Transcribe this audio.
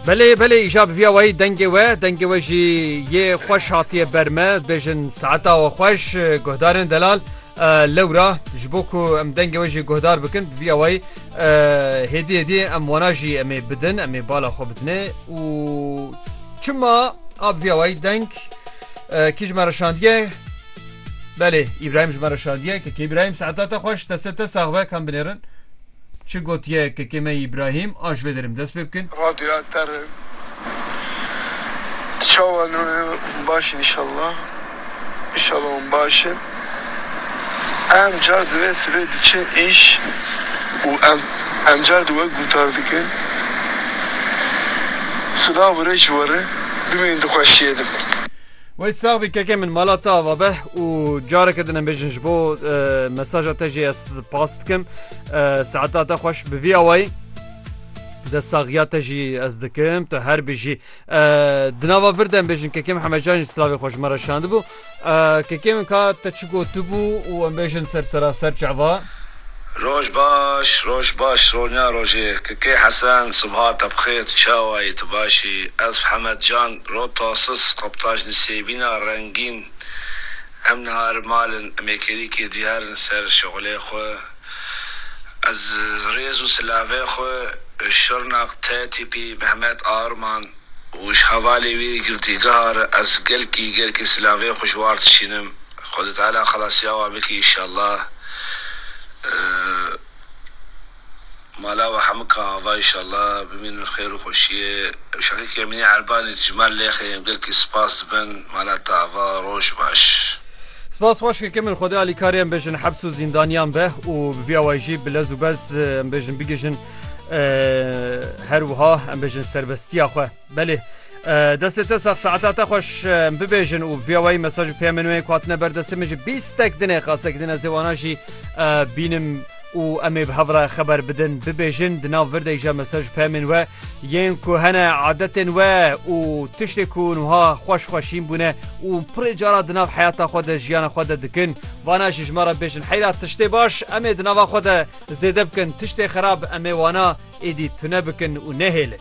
Belê belê îja bi vîya wayî dengê we dengê we jî yê xweş hatiye ber me bêjin saeta we xweş guhdarên delal lewra ji bo ku em dengê we jî guhdar bikin bi vîya wayî hêdî hêdî em wana jî em ê bidin em ê bala xwe bidinê û çima a bi vîya wayî deng kî ji me re şandiye belê îbrahîm ji me re şandiye kekê îbrahîm saeta te xweş deste te sax be kam binêrin Çi gotiye kekê me Îbrahîm a ji vê derim dest pê bikin. Radyoya ter e. Tu çawa ne yo baş in inşallah. Inşallah hûn baş in. Em car di vê sibê diçin îş û em em car di wek gûtar dikin. Silav û rê ji we re. Bimînin di xweşiyê de. Wayt sax bî kekê min mala te ava be û careke din em bêjin ji bo mesaja te jî ez spas dikim saeta te xweş bi vî awayî de saxiya te jî ez dikim tu her bijî di nava vir dem bêjin kekê min hemecan jî slavê xweş me re şandibû kekê min ka te çi gotibû û em bêjin ser sera ser çava Roj baş roj baş ronya rojê kkê hesen subha te bixêr tu çawa yî tu baş î ez hemed can ro tasis reptaj nisêbîna rengîn em niha li mal in em ê kêlîkê diyar in ser şixulê xwe ez rêz û silavê xwe ji şirnak te tîpî mehmet arman û ji hevalê wî girdîgeha re ez gelkî gelkî silavê xwe ji war dişînim. Xwedê Teala xelasîya wan bikî înşallah mala we hemû ka ava înşallah bimînin bi xêr û xweşîyê şeqîqê Emînî Erbanî dijmar lêxê em gelkî spas dibin mala te ava roj baş. Spas xweş keke min Xwedê alîkarê em bêjin heps û zîndanîyan be û bi vî awayî jî bi lez û bez em bêjin bigihîjin her wiha em bêjin serbestîya xwe. Belê destê te sax saeta te xweş bibêjin û viyawayî mesaj û peyamên wê hatine ber destê min ji bîstek dinê qasek din ez ê wana jî bînim û em ê bi hev re xeber bidin bibêjin di nav virdek jî mesaj û peyamên we yên ku hene adetên we û tiştê ku nuha xweş xweşîn bûne û pirê cara di nav heyata xwe de jiyana xwe de dikin vana jî ji me re bêjin heyra tiştê baş em ê di nava xwe de zêde bikin tiştê xerab em ê wana êdî tune bikin û nehêlin.